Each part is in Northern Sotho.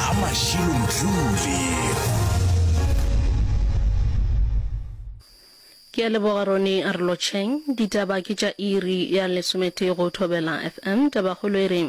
a Mashilo Mdluli. Ke a leboga Ronnie Arlocheng. Ditaba ke tša iri ya lesometee go Thobela FM. Tabakgolo e re,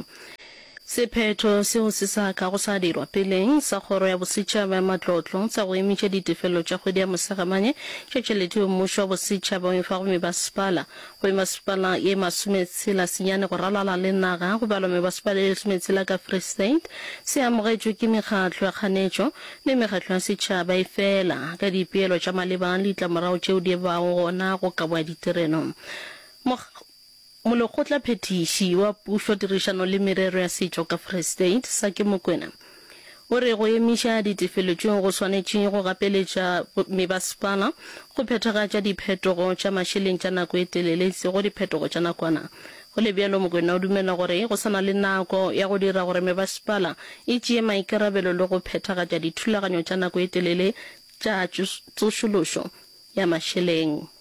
Sephetho seo se sa kago sa dirwa peleng sa Kgoro ya Bosetšhaba ya Matlotlo sa go emetša ditefelo tša kgwedi ya Mosegamane tša tšhelete yeo mmušo wa bosetšhaba o e fago mebasepala Go e maswipala e masometshela senyane go ralala le naga go balwa mebaswipala e lesometshela ka Free State. Se amogetšwe ke mekgatlo ya kganetšo le mekgatlo ya setšhaba efela ka dipeelo tša maleba le ditlamorago tšeo di bago gona go kabo ya ditirelo. Mokg. Molekgotlaphethiši wa Pušo, Tirišano le Merero ya Setšo ka Free State, Saki Mokwena, O re go emiša ditefelo tšeo go swanetše go gapeletša mebasepala go phethagatša diphetogo tša mašeleng tša nako e telele e sego diphetogo tša nakwana. Go le bjalo, Mokoena o dumela gore go sa na le nako ya go dira gore mebasepala e tšee maikarabelo le go phethagatša dithulaganyo tša nako e telele tša tsošološo ya mašeleng.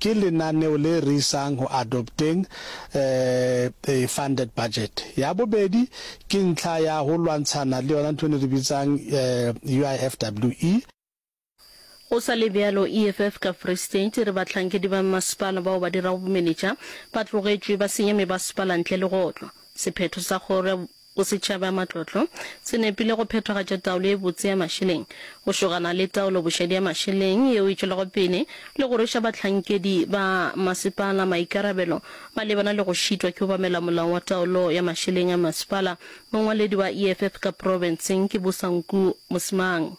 Ke lenaneo le re isang go adopteng a funded budget. Ya bobedi ke ntlha ya go lwantshana le yona ntho eno e re bitsang UIFWE. Go sa le bjalo, EFF ka Free State e re bahlankedi ba mmasepala bao ba dirago bomenetša ba tlogetšwe ba senya mebasepala ntle le go otlwa. Sephetho sa kgoro ya. Go setšhaba, matlotlo, se nepile go phethagatša taolo e botse ya mašeleng, go šogana le taolobošadi ya mašeleng yeo e tšwelago pele le go rweša bahlankedi ba masepala maikarabelo malebana le go šitwa ke obamela molao wa taolo ya mašeleng a masepala, mongwaledi wa EFF ka profenseng ke Bosanku Mosimang.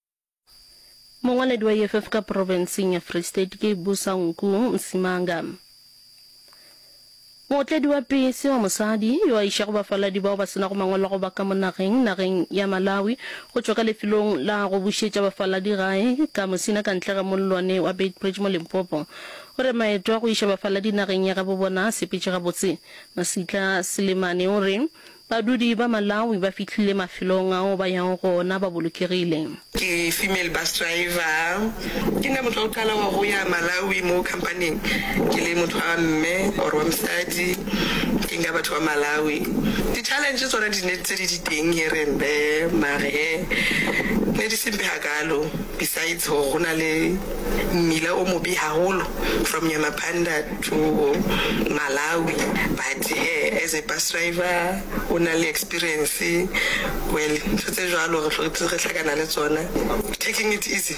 Mongwaledi wa EFF ka profenseng ya Free State ke Busa Nku Msimanga. Mootledi wa pese wa mosadi yo a išago bafaladi bao ba se nago mangwalo a go ba ka mo nageng nageng ya Malawi go tšwa ka lefelong la go bušetša bafaladi gae ka Musina ka ntle ga mollwane wa Beitbridge mo Limpopo o re maeto a go iša bafaladi nageng ya gabo bona a sepetše gabotse. Masitla Selemane o re Badudi ba Malawi ba fihlile mafelong ao ba yago go ona ba bolokegile. Ke female bus driver. Ke nna motho wa go qala wa go ya Malawi mo company-ing ke le motho wa mme or wa mosadi ke nka batho ba Malawi. Di challenge tsona di ne tse di di teng here and there mare he ne di se mpe hakalo besides hore go na le mmila o mobe haholo from Nyamapanda Togo, Malawi but he as a bus driver o na le experience well ntho tse jwalo re hlotse re hlakana le tsona taking it easy.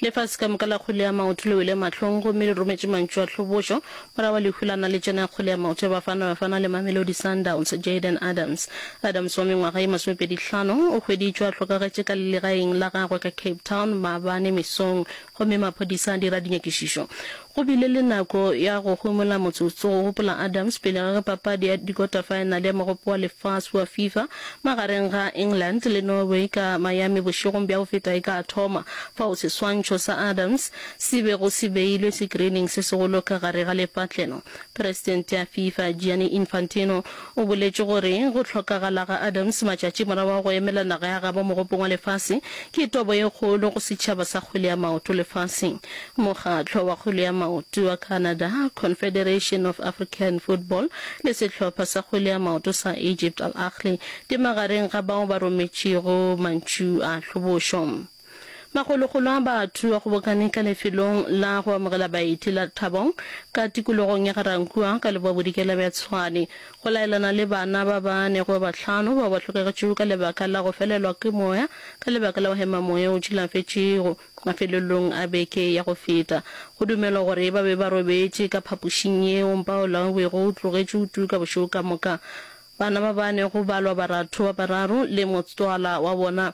Lefase ka moka la kgolea maoto le wele mahlong gomme le rometše mantšu a tlhobošo morago ga lehu la naletšana ya kgolea maoto ya Bafana Bafana le Mamelodi Sundowns. Jayden Adams Adams wa mengwaga ye masomepedi hlano o hweditšwe a hlokagetše ka legaeng la gagwe ka Cape Town maabane mesong Gomme maphodisa a dira dinyakišišo. Go bile le nako ya go homola motsotso, go gopola Adams pele ga ge papadi ya dikotafaenale ya Mogopo wa Lefase wa Fifa magareng ga England le Norway ka Miami bošegong bja go feta e ka thoma, fao seswantšho sa Adams se bego se beilwe sekirining se segolo ka gare ga lepatlelo. Presidente ya Fifa, Gianni Infantino, O boletše gore go hlokagala ga Adams matšatši morago ga go emela naga ya gabo Mogopong wa Lefase ke tobo e kgolo go setšhaba sa kgwele ya maoto lefaseng. Mokgatlo wa kgwele ya maoto wa Canada, Confederation of African Football, le sehlopha sa kgwele ya maoto sa Egypt, Al Ahly, di magareng ga bao ba rometšego mantšu a hlobošo. Makgolokgolo a batho a kgobokane ka lefelong la go amogela baeti la Thabong ka tikologong ya Ga-Rankuwa ka Lebwabodikela bja Tshwane go laelana le bana ba ba nego ba bahlano bao ba hlokagetšego ka lebaka la go felelwa ke moya ka lebaka la go hema moya o tšilafetšego mafelelong a beke ya go feta. Go dumelwa gore ba be ba robetše ka phapošing yeo mpaola o bego o tlogetše o tuka bošego ka moka. Bana ba ba nego balwa baratho ba bararo le motswala wa bona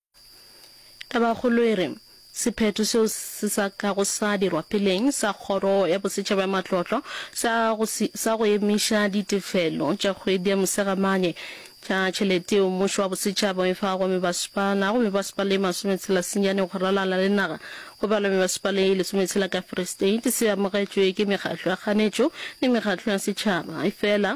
Tabakgolo e re, Sephetho seo se sa kago sa dirwa peleng sa Kgoro ya Bosetšhaba ya Matlotlo sa go, sa go emiša ditefelo tša kgwedi ya Mosegamane tša tšhelete yeo mmušo wa bosetšhaba o e fago mebasepala go mebasepala e masometshela senyane go ralala le naga go balwa mebasepala e lesometshela ka Free State se amogetšwe ke mekgatlo ya kganetšo le mekgatlo ya setšhaba efela